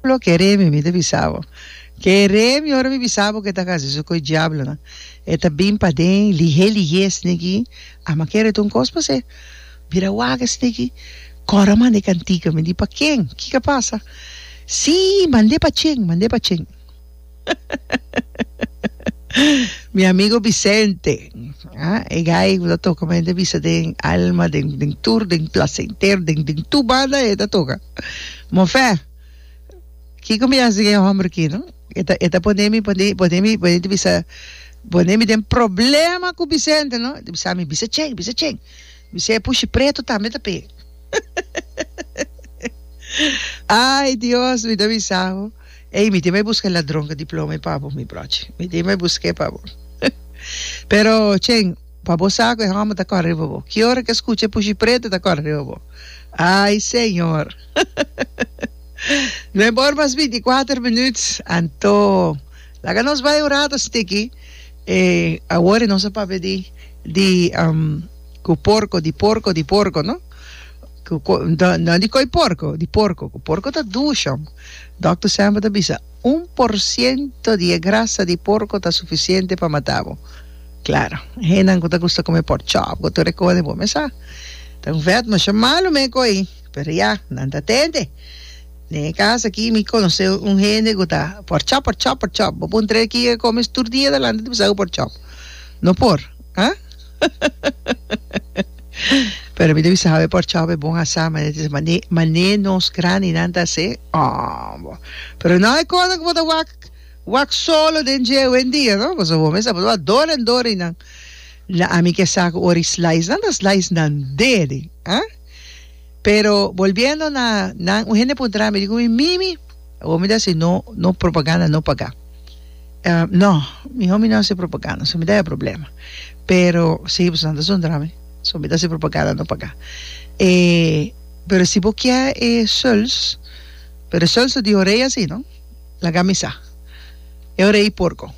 Lo ke remi mi ta bisa bo. Ke remi ora mi bisa bo ke ta kasi su ku e diablonan. E ta bin paden lihé lihé sniki a makere ta un kos pa se. Bira waka sniki kor a mande kantika mi di pa ken? Kiko a pasa? Sí mande pa Chen mande pa Chen. Mi amigo Vicente, ah, e guy ku ta toka men ta bisa den alma, den den tur, den placenter, den den tu banda e ta toka. Mofé, kiko mi hasi den e hombre ki, no? E ta e ta pone mi pone pone mi pone ta bisa pone mi den problema ku Vicente, no? Ta bisa mi bisa chin, bisa chin. Bis'é pushi pretu tambe ta p'e. Ay Dios, mi ta bisa bo. Ey, mi tin bai busca e ladron cu diploma y pa bo, mi brochi. Mi tin bai buscae pa bo. Pero, Chen, pa bo sa cu e homber ta cora riba bo. Ki ora cu e scucha e pushi preto ta cora riba bo. Ay, Señor! No e por mas binti y cuater minuut. Anto, laga nos bai un rato stiki. E, awor e nos a papia di, di, um, cu porco, di porco, di porco, no? Cu, cu, no, no di coi porco, di porco. Cu porco ta dush, hombre. Dòkter Samba ta bisa, Un por siento di e grasa di porko ta sufisiente pa mata bo. Claro, hennan ku ta gusta kume pork chop ku tur e kosa den bo mesa ta un vèt masha malu men ku ei. Pero ya, nan ta tende. Den e kas aki mi konosé un hende ku ta pork chop, pork chop, pork chop. Bo puntra el kiko e kome tur dia ta lanta ta bisa ku pork chop. No por. Ha? Pero mi ta bisa hawe por chao e bon asa mane ta mane mane nos grandi nan ta hase ah bo pero no hay cosa ku bo ta wak wak solo den dje hoendia no pasobra bo mesa bo ta wak dor en dor i nan la ami ke sa ku ora i slice nan ta slice nan deri ha Pero bolbiendo na nan un hende puntra mi di cu mi mimi awor mi ta haci no no propaganda no paga ah no miho mi no haci propaganda so mi ta e problema pero si bo san ta suntra mi so mi ta haci propaganda no paga e pero si bo kier e sols pero sols ta diho rey asino laga mi sa e ora y porco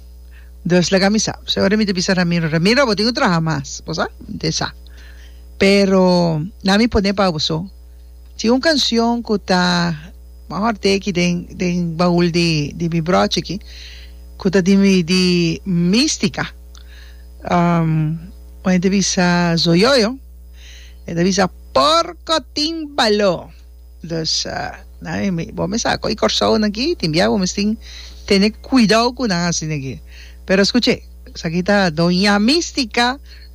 dos laga mi sa so e ora mi ta bisa Ramiro Ramiro abo tin cu traha mas bo sa mi ta e sa. Pero na mi pone pa boso tin un cancion cu ta mejor te aki den den baul di di mi brochi aki cu ta di mi di Mistica um cu hende bisa zoyoyo e ta bisa porco tin balo dus na mi bo mi sa coge Corsounan aki tin bia bo mes tin tene cuidao cu nan a haci naki pero scuche esaki ta Doña Mistica.